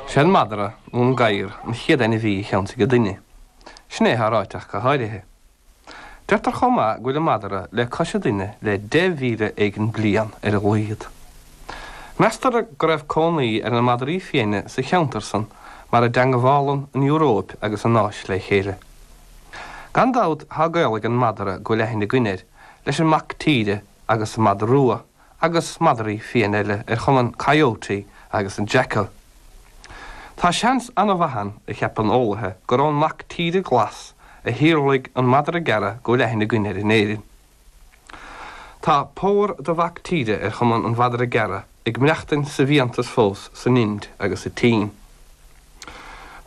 Sé an madra nó an gadhar an chéad ainmhí a cheansaigh an duine. Sin é atá ráiteach go háirithe. Deirtear chomh maith go bhfuil an madra le cois an duine le deich mhíle éigin bliain ar a laghad. Meastar go raibh cónaí ar na madraí fiaine sa cheantar san mar a dteangabhálann an Euróip agus an Áis le chéile. Gan dabht tá gaol ag an madra go bhfuil aithne againn air leis an mac tíre agus an madra rua. agus madraí fiaine eile ar chuma an Coyote agus an Jackal. Tá seans an-mhaith ann, a cheapann eolaithe, gur ón mac tíre glas a shíolraigh an madra gearra go bhfuil aithne againn air in Éirinn. Tá pór de mhac tíre ar chuma an mhadra gearra ag maireachtaint sa bhfiántas fós san Ind agus sa tSín.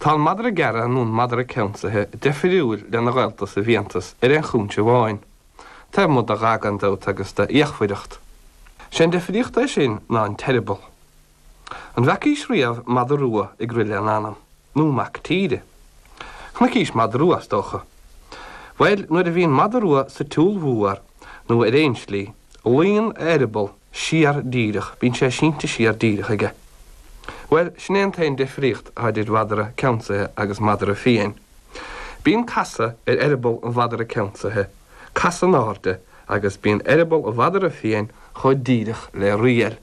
Tá an madra gearra nó an madra ceansaithe deifiriúil lena ghaolta sa bhfiántas ar aon chúinse amháin. Taobh amuigh de dhath gan dabht agus de fhíochmhaireacht, sé an difríocht é sin ná an t-eireaball. An bhfeacaís riamh madra rua ag rith lena anam? Nó mac tíre? Chonaicís madra rua is dócha. Bhuel, nuair a bhíonn madra rua sa tsiúl mhór, nó ar aon slí, luíonn a eireaball siar díreach, bíonn sé sínte siar díreach aige. Bhuel, sin é an t-aon difríocht atá idir mhadra ceansaithe agus madra fiáin. Bíonn casadh ar eireaball an mhadra ceansaithe, casadh in airde, agus bíonn eireaball an mhadra fiain chomh díreach le riail.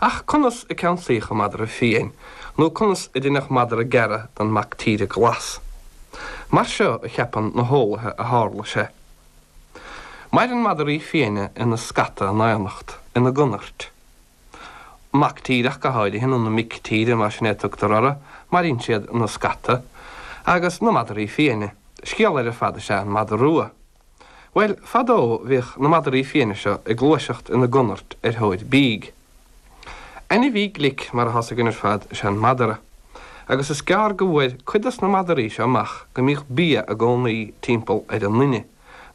Ach conas a ceansaíodh an madra fiain, nó conas a deineadh madra gearra den mac tíre glas? Mar seo a cheapann na heolaithe a tharla sé. Maireann madraí fiaine ina scata in éineacht, ina gconairt. Mac tíreacha go háirithe, nó na mic tíre, más in é a tugtar orthu, maireann siad ina scata, agus na madraí fiaine. Scéal eile ar fad is ea an madra rua. Bhuel, fadó bhíodh na madraí fiaine seo ag gluaiseacht ina gconairt ar thóir bídh. Ainmhí glic, mar atá a fhios againn ar fad, is ea an madra, agus is gearr go bhfuair cuid dos na madraí seo amach go mbíodh bia i gcónaí timpeall ar an nduine.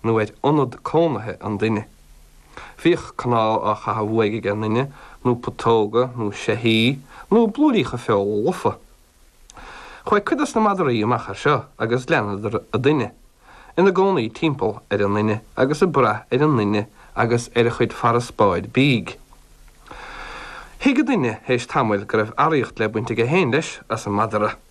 nó ar ionad cónaithe an duine. Bhíodh cnámh á chaitheamh uaidh ag an duine, nó putóga, nó seithí, nó blúiríocha feola lofa. Fuair cuid dos na madraí amach é seo agus leanadar an duine, ina gcónaí timpeall ar an nduine agus ag braith ar an nduine agus ar a chuid farasbairr bídh. Thuig an duine théis tamaill go raibh áraíocht le baint aige féin, leis, as an madra.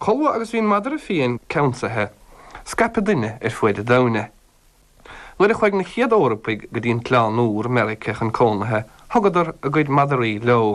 Chomh luath agus bhí an madra fiáin ceansaithe scaip an duine ar fuaid an domhain é. Nuair a chuaigh na chéad Eorpaigh go dtí an tOileán Úr, Meirice, chun cónaithe, thugadar a gcuid madraí leo.